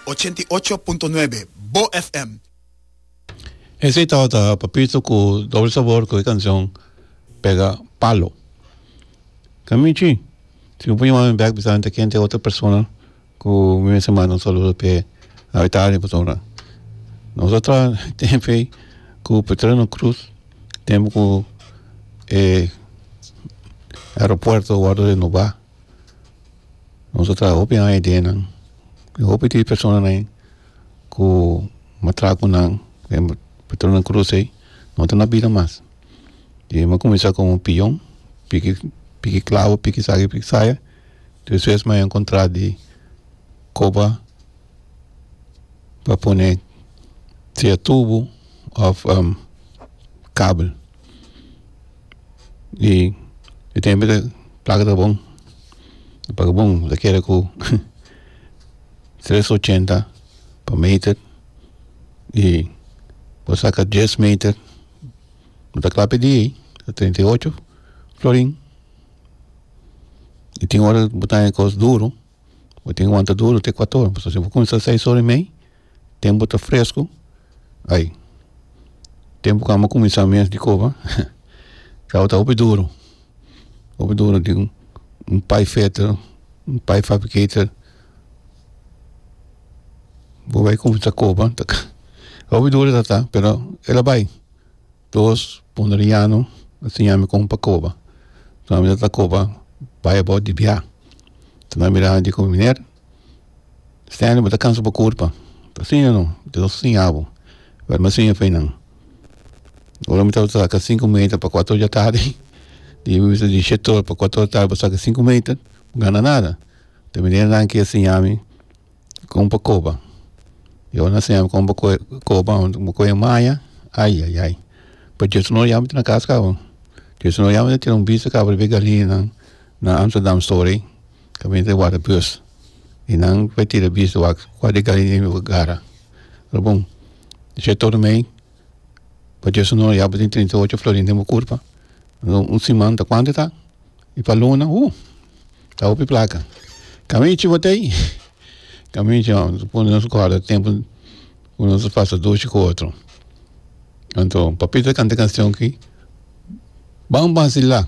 Ochenta i ocho punto nuebe, Bo FM. Esey tao ta Papito cu Doble Sabor cu e cancion Pega Palo. Ka mi chi. Si bo por yama mi bek bisa mi ta ken ta e otro persona cu mi mester manda un saludo p'e na Italia pasobra nos a traha tempo ey cu Petrino Cruz tempo cu e aeropuerto wordo renoba. Nos ta traha hopi aña di nan y hopi di personanan ain ku m'a traha ku nan den patronan di krus ei no ta na bida mas y m'a kuminsá komo un piyon piki piki klabo piki esaki piki saya despues m'a enkontrá di koba. pa pone sia tubo of kabel y e tempo ta placa ta bon ta paga bon ta kere ku tres ochenta pa meter y por saka dies meter no ta kla p'e dia ta treinta y ocho florin y tin ora bo ta haña kos duru. bo tin wanta duru te kuato ora pasobra si bo kuminsa seis ora i mei tempu ta fresku ai tempu ku amo kuminsá mes di koba awo ta hopi duru hopi duru tin un pai feter un pai fabriketer bo bai kuminsá koba hopi duru tabata pero ela bai Dos ponderiano a siña mi kon pa koba so mi ta ta koba bai about di bia ta nan mira mi diku miner Stanley bo ta kansa bo kurpa ta siña no Dios a siña bo pero mi a siña fe nan ora mi tabata saka sinku meter pa kuater ora di atardi y mi bisa di shete ora pa kuater ora di atardi bo saka sinku meter bo gana nada ta miner nan ke a siña mi Kon pa koba mi awe na enseña kon pa koba bo koba maya ayayay pa dios no yam na kas kaba dios no yam na tira un bisa kaba riba e galinan na amsterdam stori ta bini ta wara bus y nan ta tira bisa ta wak kual di galina mi bo gara ta bon she tormei pa dios no yam tin treinta y ocho florin den bo kurpa un siman ta kuantu ta. I pa luna, hu, ta hopi plaka. Kamichi batey, kamichi a pone nos guarda tempu ku nos a pasa dushi ku otro. Anto, Papito a kanta e kanshon aki, Ban basila.